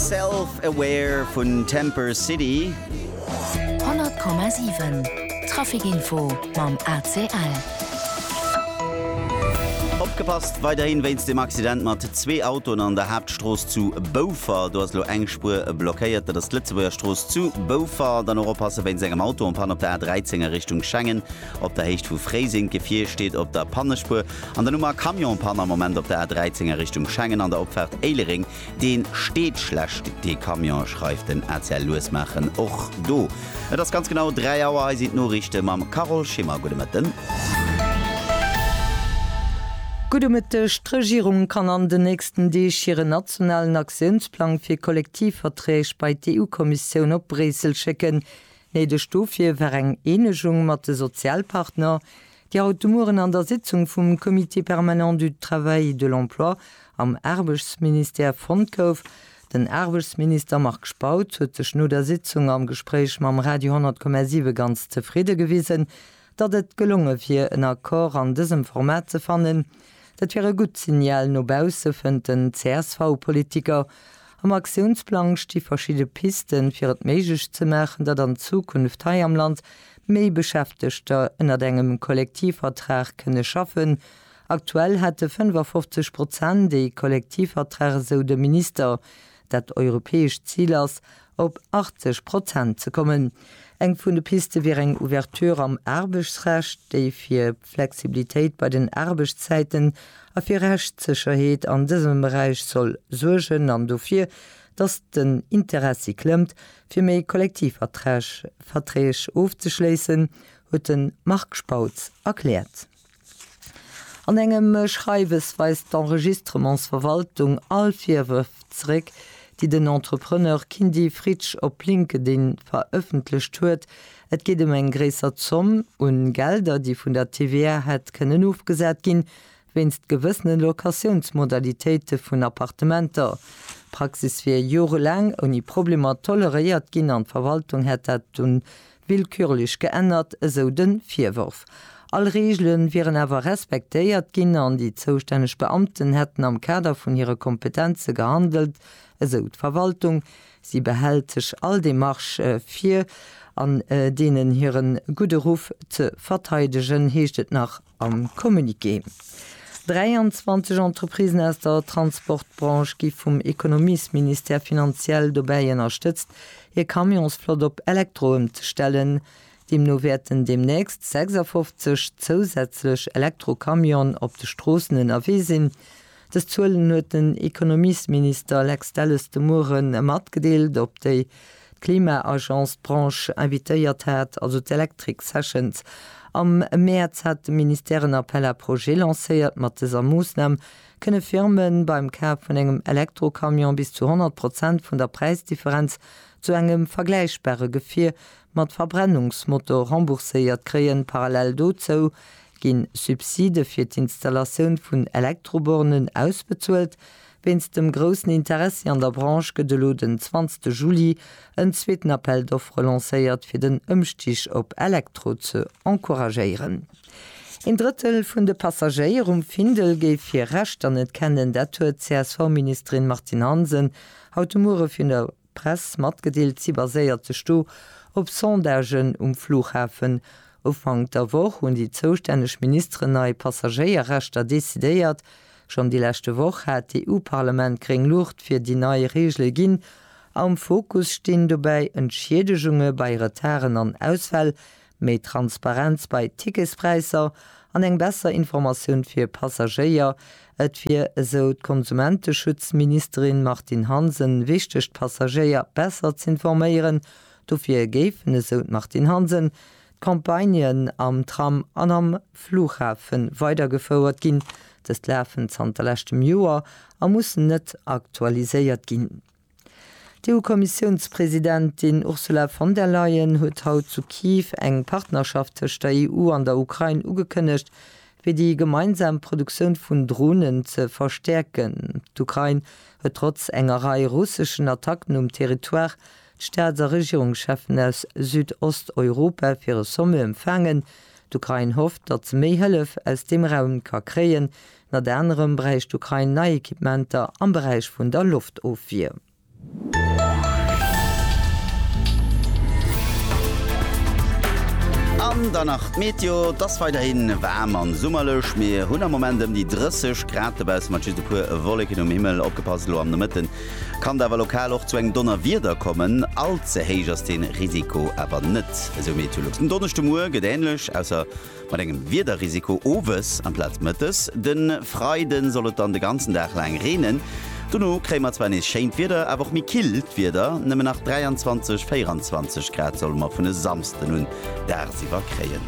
Self Aware vun Temper City. 100,7 Traficinfo mam ACL. Opgepasst weiderhin wéinst dem Accident mat zwee Autoen an der Haaptstrooss zu Boufer. Do ass elo eng Spuer blockéiert, dat ass d'Lëtzebuerger Strooss zu Boufer. Dann och oppasse wéinst engem Auto an Panne op der A13 a Richtung Schengen op der Héicht vu Fréiseng. D'Gefier steet op der Pannespuer. An dann hu mer Camion an Panne am Moment op der A13 a Richtung Schengen an der Opfaart Éilereng. Dee steet schlecht dee Camion, schreift den ACL. Lues maachen och do. Et ass ganz genau 3 Auer. Hei sinn d'Noriichte mam Carole Schimmer. Gudde Mëtten. Gudde Mëtteg. D'Regierung kann an den nächsten Deeg hiren nationalen Aktiounsplang fir Kollektivverträg bei d'EU-Kommissioun op Bréissel schécken. Néideg dofir war eng Eenegung mat de Sozialpartner. Déi haut de Mueren an der Sitzung vum Comité permanent du Travail et de l'Emploi am Aarbechtsministère fonnt gouf. Den Aarbechtsminister Marc Spautz huet sech no der Sitzung am Gespréich mam Radio 10,7 ganz zefridde gewisen, datt et gelonge wier en Accord an dësem Format ze fannen. Dat wier e gutt Signal no bausse, fënnt den CSV-Politiker. Am Aktiounsplang sti verschidde Pisten, fir et méiglech ze maachen, datt an Zukunft hei am Land méi Beschäftegter ënnert engem Kollektivvertrag kënne schaffen. Aktuell hätte 55 Prozent ee Kollektivvertrag, esou de Minister. Dat europäescht Zil ass, op 80 Prozent ze kommen. Eng vun de Piste wier eng Ouverture am Aarbechtsrecht, déi fir. Flexibilitéit bei den Aarbechtszäiten a fir Rechtssécherheet an dësem Beräich soll suergen an dofir, datt den Interessi klëmmt, fir méi Kollektivverträg Verträg ofzeschléissen, huet de Marc Spautz erkläert. An engem Schreiwes weist d'Enregistrementsverwaltung all Virwërf zeréck, déi den Entrepreneur Kindy Fritsch op LinkedIn verëffentlecht huet, Et geet ëm eng gréisser Zomm u Gelder, déi vun der TVA hätt kënnen ofgesat ginn, wéinst gewëssene Locatiounsmodalitéite vun Appartementer. D'Praxis wier jorelaang ouni Problemer toleréiert ginn an d'Verwaltung hätt dat dunn willkürlech geännert, esou de Virworf. All Reegele wieren awer respektéiert ginn an déi zoustänneg Beamten hätten am Kader vun hire Kompetenze gehandelt, esou d'Verwaltung. Si behält sech all Demarche vir, an deenen hire gudde Ruff ze verteidegen, heescht et nach am Communiqué. 23 Entreprisen aus der Transportbranche gi vum Ekonomiesministère finanziell dobäi ënnerstëtzt, hir Camionsflott op Elektro ëmzestellen. Deemno wäerten deemnächst 56 zousätzlech Elektrocamionen op de Stroossen ënnerwee sinn. Dës Zuelen huet den Ekonomiesminister Lex Delles de Muere matgedeelt, op déi d'Klima-Agence d'Branche invitéiert hat, also d'Electric Sessions. Am Mäerz hat de Ministère en Appel à projets lancéiert. Mat dëser Moossnam kënne Firme beim Kaf vun engem Elektrocamion bis zu 100 Prozent vun der Präisdifferenz zu engem vergläichbare Gefier mat Verbrennungsmotor rembourséiert kréien. Parallel dozou Ginn Subside fir d'Installatioun vun Elektrobornen ausbezuelt? Wéinst dem groussen Interessi an der Branche gëtt elo den 20 Juli en zweeten Appel d'offres lancéiert fir den Ëmstig op Elektro ze encouragéieren. Een Drëttel vun de Passagéier um Findel géif hir Rechter net kennen, dat huet d'CSV-Ministerin Martine Hansen haut de Muere virun der. Press matgedeelt, si baséiert sech do op Sondagen um Flughafen. Ufank der Woch hunn déi zoustänneg Ministeren nei Passagéierrechter decidéiert. Schonn déi leschte Woch hat d'EU-Parlament gréng Luucht fir déi nei Reegele ginn. Am Fokus stinn dobäi Entschiedegunge bei Retarden an Ausfäll, Méi Transparenz bei Ticketspräisser an eng besser Informatioun fir Passagéier, Et wier, esou d'Konsumenteschutzministerin Martine Hansen, wichteg d'Passagéier besser z'informéieren. Dofir géifen, esou d'Martine Hansen, d'Campagnen am Tram an am Flughafe weidergefouert ginn. Dës lafen zanter leschtem Joer a mussen net aktualiséiert ginn. D'EU-Kommissiounspresidentin Ursula von der Leyen huet haut zu Kyiv eng Partnerschaft tëscht der EU an der Ukrain ugekënnegt, fir déi gemeinsam Produktioun vun Dronen ze verstäerken. D'Ukrain huet trotz enger Rei russeschen Attacken um Territoire d'Staats a Regierungscheffen aus Südosteuropa fir e Sommet empfaangen. D'Ukrain hofft, datt se méi Hëllef aus deem Raum ka kréien, Ënnert anerem bräicht d'Ukrain nei Equipementer am Beräich vun der Loftofwier. An dann nach d'Meteo, Et ass weiderhi waarm an summerlech. Mir hunn am Moment ëm déi 30 Grad dobaussen, mat just e puer Wolleken um Himmel. Opgepasst, elo am Nomëtte kann et awer lokal och zu engem Donnerwieder kommen. All ze héich ass dee Risiko awer net, esou Meteolux. Den Donneschde Muer gëtt änlech, ausser Mat engem Wiederrisiko owes amplaz mëttes. De Freide soll et dann de ganzen Dag laang reenen, dono kréie mer zwar nees schéint Wieder, awer och méi killt Wieder, nëmmen nach 23, 24 Grad solle mer vun e Samsden un dagsiwwer kréien.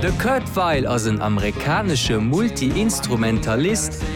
De Kurt Weill ass en amerikanesche Multi-Instrumentalist.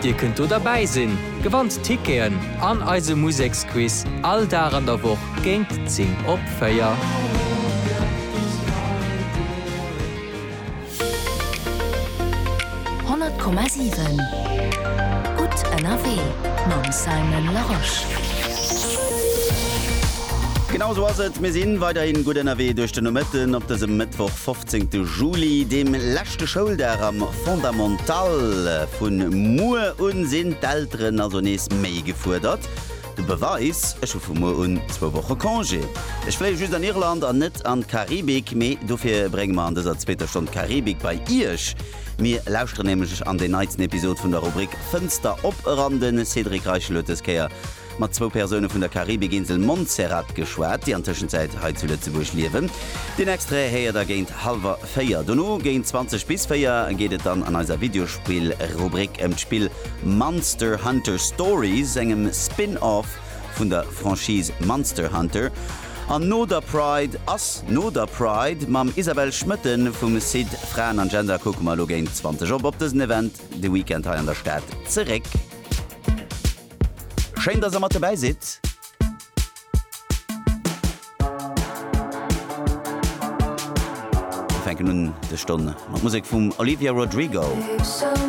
Dir kënnt do derbäi sinn, gewannt Ticketen an eise Museksquiz all Dag an der Woch géint 10 op 4. Honnert Komma siwen Gutt ënnerwee mam Simon Larosche. Genau esou ass et, mir si weiderhi gutt ënnerwee duerch den Nomëtten op dësem Mëttwoch 15 Juli, deem leschte Schouldag am. Fondamentale, Vun muer un sinn d'Elteren also nees méi gefuerdert. De Beweis, Ech hu vu muer un zwou Woche Congé. Ech fléie just an Irland an net an d'Karibik, mee dofir brénge mer an dëser zweeter Stonn d'Karibik bei Iech. Mir lauschteren nämlech an deen neitsten Episod vun der Rubrik Fënster op eran. De Cédric Reichel huet dës Kéier mat zwou Persoune vun der Karibikinsel Montserrat geschwat, déi an Tëschenzäit hei zu Lëtzebuerg liewen. Den Extrait héiert der géint hallwer véier. Dono géint 20 bis véier geet et dann an eiser Videospill-Rubrik ëm d'Spill Monster Hunter Stories, engem Spin-off vun der Franchise Monster Hunter. An no der Pride ass no der Pride. Mam Isabelle Schmoetten vum Site Fraen an Gender kucke mer elo géint 20 op op dësen Event de Weekend hei an der Stad zeréck. Schéin dass der mat dobäi sidd! Mir fänken un dës Stonn mat Musek vum Olivia Rodrigo.